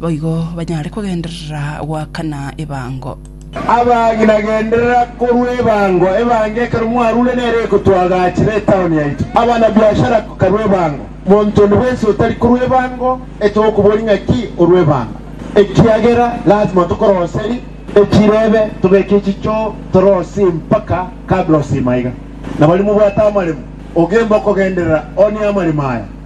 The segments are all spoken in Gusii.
boigo banyare kogenderera goakana ebango. Abagima genderera korwa ebango ebango ekero mwarure nere egotwagaachera etaoni yaito. Abana biashara karwa ebango. Monto onde bwensi otari korwa ebango etwa gokobori ng'aki orwa ebango. Ekiagera lazima tokoroseri echirebe tobeke echicho torosi mpaka kabla osima iga. Nabari mobwate amaremo, ogembe okogenderera one amaremo aya.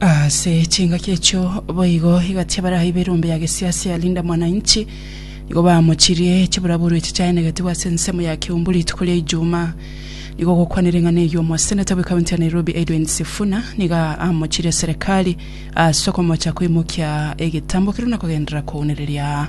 Ase chingaki echio boigo egati y'abaraibi erombe ya gesiasi ya Linda Mwananchi nigo bamochirie chiburaburu echi chiaenegetigwe ase ensemo ya Kiumbu rituko ria Ijumaa. Nigo gokwana ring'ana eyio omoseneta bwe kaunti ya Nairobi Edwin Sifuna nigo amochirie serikali ase okomocha koimokia egetambo keria na kogenderera kounereria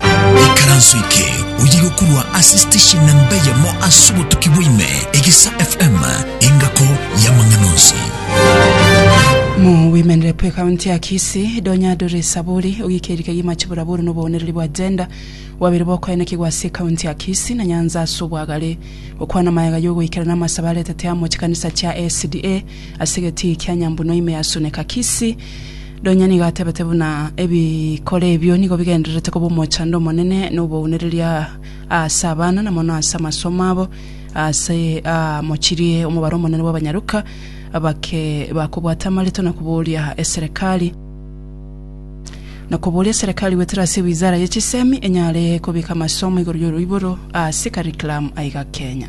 Ekaranso eke oye gokorwa ase station namba eyemo ase obotuki bwaime, Egesa FM, engako y'amang'ana onsi. Mu Women Rep ekaunti ya Kisii, Donya Doreen Saburi ogikeriri kegima chiburaburu na oboonereri bwa gender bwabeire bokoenekigwa ase ekaunti ya Kisii na Nyanza ase obwagare. Gokwana magega y'ogoikerana amasabo aretete amo chikanisa chia SDA ase egetii kia Nyambunua ime ya Suneka Kisii, Nonya nigo atebete buna ebikore ebio nigo bigendererete koba omochando omonene na obounereria aase abana na mono aase amasomo abo. Aase aa mochirie omobaro omonene bw'abanyaruka abake bakobwata amareto na koboria eserekari na koboria eserekari goetera ase wizara ye chisemi enyare kobeka amasomo igoro y'oroiboro ase curriculum aiga Kenya.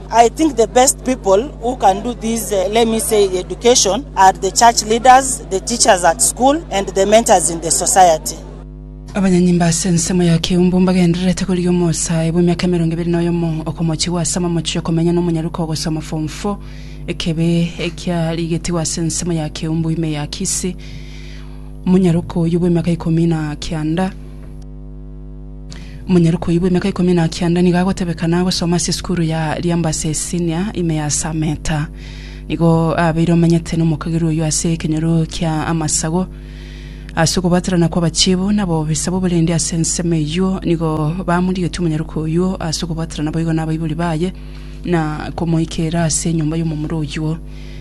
I think the best people who can do this uh, let me say education are the church leaders, the teachers at school and the mentors in the society. abanyanyimba ase ensemo ya keumbu mbagendererete korigia omosae bw'emiaka emerongo ebere na oyomo okomochigwa ase amamochi okomenya n'omonyaruka ogosoma form 4 ekebe ekiarigetigwa ase ensemo ya keumbu ime ya kisi omonyaruka oyu bw'emiaka ikomi na kianda Omonyaroka oyio bw'emiaka ikomi na kianda nigo agotebekana agosoma ase esukuru ya Liambase Senior ime ya Sameta. Nigo abeire omanyete n'omokagera oyio ase ekenyoro kia amasagu. Ase okobwaterana kw'abachiibu na abobisa b'oborendi ase ensemo eyio nigo bamorigetie omonyaroka oyio ase okobwaterana boigo n'abaibori baye na komoikeera ase enyomba y'omomura oyio.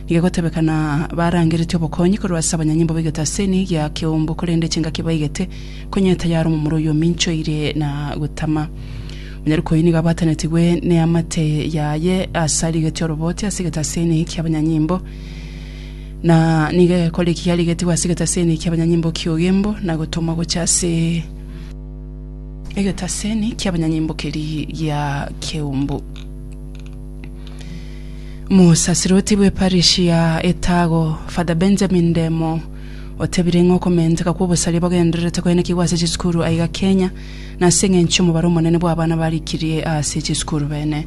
Nigo egotebekana barangeretie obokonyi korwa ase abanyanyimbo baigete ase eniyi gia keumbu korende chingaki baigete Konya tayare omomura oyio ominchoire na gotama. Monyariko oyio nigo abwatanetigwe neamate yaye ase arigetie oroboote ase egetaseni ki'abanyanyimbo. Na nigo egekora eki yarigetigwe ase egetaseni ki'abanyanyimbo ki'ogembo na gotomwa gocha ase egetaseni ki'abanyanyimbo keria gia keumbu. Mosasirote bw'eparish ya Etago, Father Benjamin Ndemo, Otebire ng'a okomenteka kw'obosaria bogendererete koenekigwa ase chisukuru aiga Kenya, na ase eng'encho omobaro omonene bw'abana barikirie ase chisukuru bene.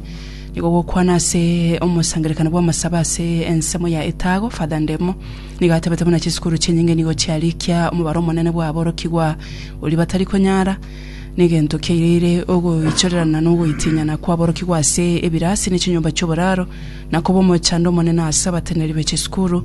Nigo gokwana ase omosangererekano bw'amasabo ase ensemo ya Etago, Father Ndemo nigo atebete buna chisukuru chinyinge nigo chiarikia omobaro omonene bw'aborokigwa oria batari konyara, negento kiaireire ogoichorerana na ogoitinyana kw'aborokigwa ase ebirasi ne chinyomba chi'oboraro, na koba omochando omonene ase abateneri be chisukuru.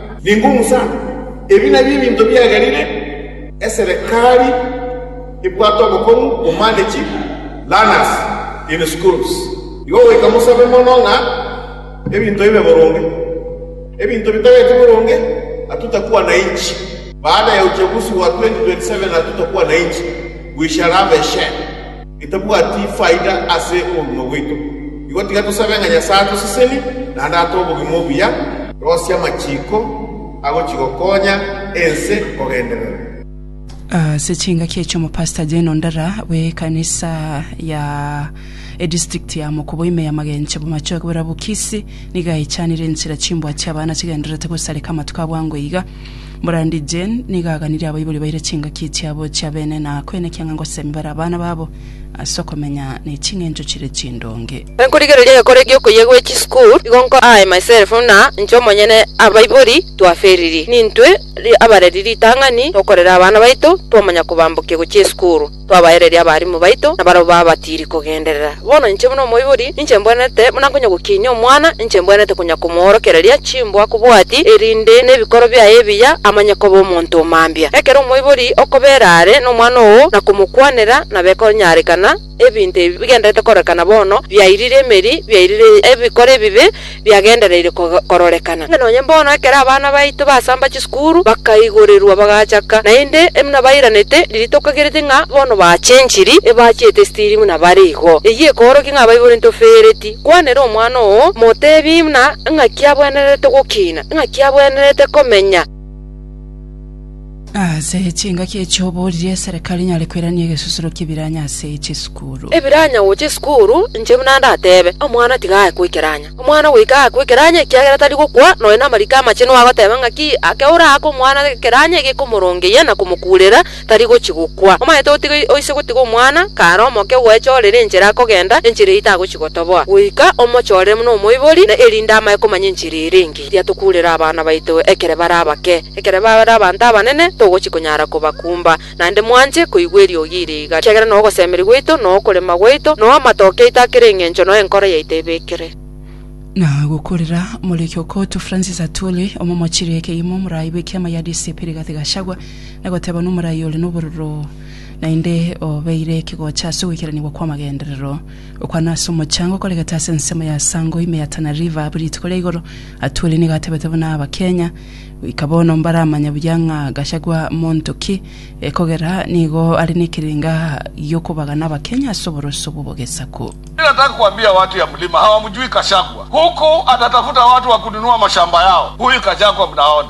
Ningomusa ebi nabio ebinto biagerire, eserekari ebwate obokong'u bomanage learners in schools. Igo goika mosabe mono ng'a ebinto bibe boronge. Ebinto bitageti boronge atutakwana inchi. Baada ya uchaguzi wa 2027 atutakwana inchi, we shall have a share. Getabwati faida ase obogima bwaito. Igo tiga tosabe ng'a Nyasae atosesenie, naende atoe obogima obuya. Rosia amachiko agochigokonya ense kogenderera. Ase chingaki echi omopastor Jane Ondara bw'ekanisa ya edistrict ya Mokobo ime ya Magenche bomachoge boria Bukisi nigo aechanire enchera chimbwa chi'abana chigendererete gosareka amatuko abwango iga. Brandi Jane nigo aganirie abaibori baire chingaki chiabo chia bene na koenekia ng'a ngosemia bare abana babo ase okomenya ne ching'encho chire chindonge. Enkorigereria egekora egi'okoyia gwe chisukuru igo nko aye myself buna inche omonyene abaibori twaferiri nintwe abareri ritang'ani tokorera abana baito twamanya kobambokia gochia esukuru. Twabaereria abarimu baito, na barabwo babatiiri kogenderera. Bono inche buna omoibori, ninche mbwenerete, buna nkonya gokiinia omwana, inche mbwenerete konya komoorokereria chimbwa akobwati, erinde nebikoro biaye ebiya amanye koba omonto o mambia. Ekero omoibori okobeera are nomwana oo, na komokwanera, na bekonyarekana, ebinto ebi bigendererete kororekana bono, biairire emeri, biairire ebikoro ebibe, biagendereire kororekana. Inga nonye mbono ekero abana baito basamba chisukuru bakaigorerwa bagachaka, naende buna bairanete riria tokagerete ng'a bono bachenchiri, ebachiete esitiri buna bare igo. Eyio ekoorokia ng'a Baibuli ntofereti. Kwanera omwana oo, moteebie buna ing'aki abwenerete gokina, ing'aki abwenerete komenya. Ase chingaki echi oboorire eserekari enyare koirania egesusuro ki'ebiranya ase chisukuru. Ebiranya gocha esukuru, inche buna ndatebe, omwana tiga aye kwekeranya. Omwana goika aye kwekeranya ekiagera tari gokwa, nonya namariko amache nigo agoteba ng'aki, ake oraake omwana ekeranya egekomorongeyia na komokuurera, tari gochia gokwa. Omanyete otiga oise gotiga omwana, kare omoke ogwechoorere enchera akogenda, enchera eyio tagochia gotoboa. Goika omochoorere buna omoibori, na erinde amae komanya enchera ere engiya. Riria tokuurera abana baito ekere bare abake, ekere bare abanto abanene, togochi konyara kobakumba. Naende mwanche koigwa eriogi iri iga, ekiagera noo ogosemeria gwaito, noo okorema gwaito, noo amatoke aito akere eng'encho, noo enkoro yaito ebekire. Na gokurira more Kyokotu Francis Atwoli, omomochirie ekegumo, omorai bw'ekiama gia DCP Rigathi Gachagua, na goteba nomorai ore nobororo naende obeire ekegocha ase ogoikeranigwa kw'amagenderero. Okwana ase omochango okoregete ase ensemo ya Sango ime ya Tana River abwo rituko ria igoro Atwoli nigo atebete buna aba Kenya goika bono mbaramanya buya ng'a Gachagua monto ki ekogera nigo are nekerenga giokobagana aba Kenya ase oboroso obwo bogesaku. Mi nataka kuambia watu ya mlima hawamjui Kashagwa huku atatafuta watu wa kununua mashamba yao huyu Kajagwa mnaona.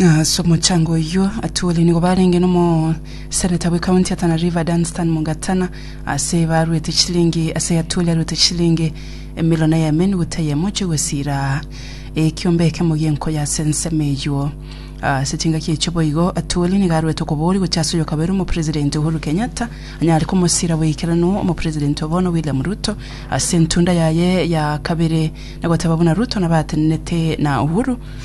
Ase omochango oyio atwore nigo barenge n'omoseneta bw'ekaunti ya Tana River Dunstan Mugatana ase baruete chilingi ase atwore aruete chilingi emilion eyemo enigo teyemo chio gwesira ekiombe ekemo gi'enko y'ase ensemo eyio. Ase chingaki echio boigo atwore nigo aruete okoboria gochia ase oyokabere omopresident Uhuru Kenyatta anyare komosira boikeranu omopresident obono William Ruto ase entunda yaye ya kabere na goteba buna Ruto nabo atenenete na Uhuru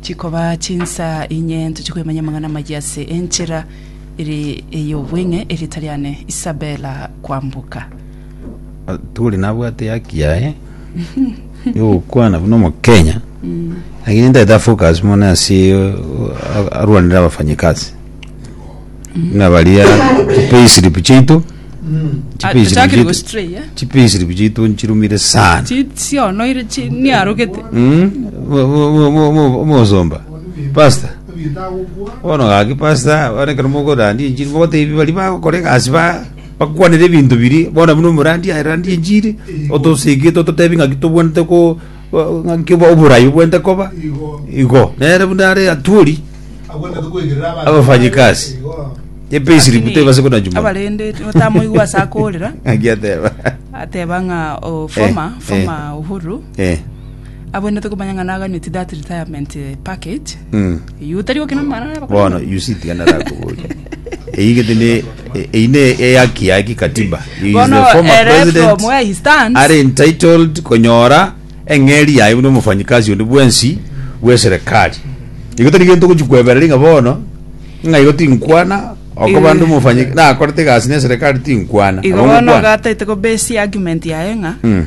Chikoba chinsa inye ntoche kwemanya amang'ana amayia ase enchera ere ey'obweng'e erieta riane Isabella Kwambuka. tore nabwate haki yaye yogokwana buna omokenya lakini ntagete afocus mono ase uh, arwanire abafanyikazi Buna baria chipayslip chiaito Ah, chipayslip tochakire chiaito- gostray, eh? chipayslip chiaito nchirumire sana Chi- sionoire chi- niarogete Mm, bo- bo- bo- bo- bo- omosomba pasta bono gaki pasta bono ekero mokorandi enchiri mogotebi bari bagokora egasi ba bakwanera ebinto biri bono buna omorandi arandi enchiri otosigete ototebi ng'aki tobwanete ko ng'aki bo- oborayi bwente koba igo nere buna are atwori abafanyikasi epeisiri Lakini butebase kuna juma abarende otamoigwa ase akorera ng'aki ateba ateba ng'a o former Eh, former uhuru eh abwenerete komanya ng'a naganeti that retirement eh, package mm. Eyio otari gokina amang'ana na abakorinto. Bono you see tiga narakoboria eyio gete ne e- eyio ne eyaki ya kikatiba He is Bono the former ere from president where he stands. are entitled konyora eng'eri yaye buna omofanyikasi onde bwensi bw'eserekari igo tari gento ogochi kwebereri ng'a bono ng'a igo tinkwana okoba Eh. nde omofanyi nakorete egasi na eserekari tinkwana Igo Abwo bono ngokwana. gataete ko base argument yaye ng'a Mm.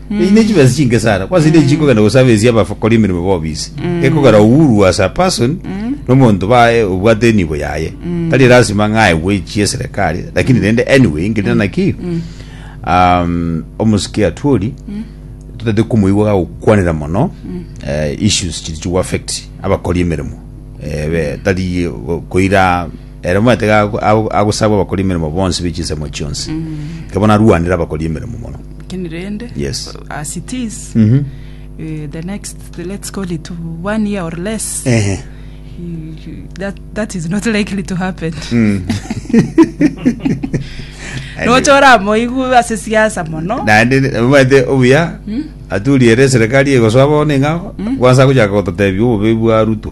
Eyi nechibesa chinke sana kwase mm. nechi kogenda gosaba esi abakora emirimo bobisi mm. ekogera uhuru as a person mm. nomonto baye obwate enibo yaye mm. tari lazima ng'aegwe echie serikali lakini mm. rende anyway ngerina mm. naki mm. um, omosike atwori mm. totete komoigwa gagokwanera mono mm. uh, issues chiri chigo affect abakora emirimo eh, tari koira Ere omanyete iga ago- ago- agosabwa abakori emeremo bonsi be chinsemo chionsi, iga bono arwanere abakori emeremo mono. Lakini rende Yes. as it is Mhm. eh, the next let's call it one year or less Ehe. eh, that, that is not likely to happen Mm. nocha oramoigu ase siasa mono naende omanyete obuya aturiere eserikari egosoa bono ing'ao kwansa gochaka gototebi obobe bwa ruto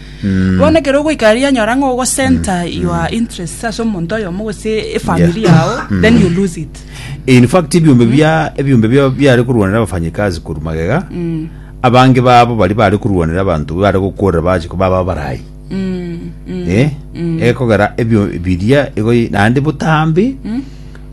Bono ekero ogoika aria nyora ng'a ogo center your interests ase omonto oyomo gose efamiri yao then you lose it In fact ebiombe bia ebiombe bia biare korwanera abafanyikazi korwa magega. Abange babo bari bare korwanera abanto bare gokorera bache ko baba abarai. Eh? Ekogera ebio biria igo naende botambe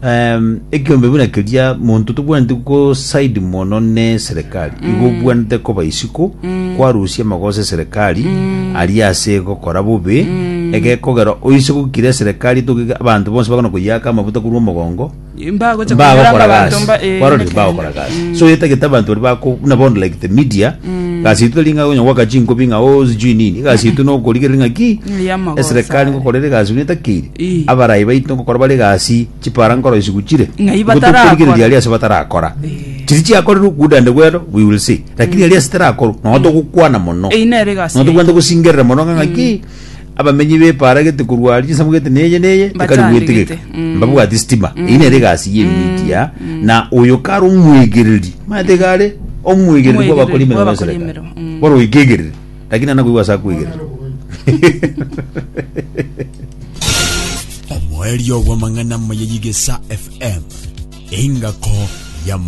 Em, ekiombe buna keria monto tobwaneti gosaidi mono ne serikali igo obwanete koba isiko kwarusia amagoso eserikali aria ase gokora bobe egekogera oise gokira eserikali togige abanto bonsi bakona koyaka amabuta korwa omogongo mbagocha mbagokora kunyora abanto gasi mba eh, kwarorire nekenene. mbagokora gasi Mm. so yetagete abanto bari bako buna bono like the media gasi itu tari ng'a onya gwaka chinkobi ng'a o sijui nini gasi itu nokorigereri ng'a ki Ni ya amagoso eserikali aye. ngokorera egasi buna etakeire Ii. Abarai baito ngokora bare egasi, chipara nkoro isiko chire, Ng'ai igo batarakora? tokorigereria aria ase batarakora. Chiria chiakorire okuuda ande bwero, we will see, lakini aria ase tarakorwa, nonya togokwana mono. Eyio nere egasi Nonya tokobwate yaito. gosingerera mono ng'a ng'aki abamenyi b'epaara gete korwa aria chinsemo gete neye neye, ekari Batande gwetigeka. gete. Mm. Mbabwati sitima. Eyio nere egasi ye media, na oyo kare omwegereri, manyete iga are omwegereri Omwegereri bw'abakori emeremo bw'abakori y'eserikari. emeremo, mm. Bono oikegereri. Lakini ana koigwa ase akwigerera. Omoerio bw'amang'ana amaya y'Igesa FM, engako ya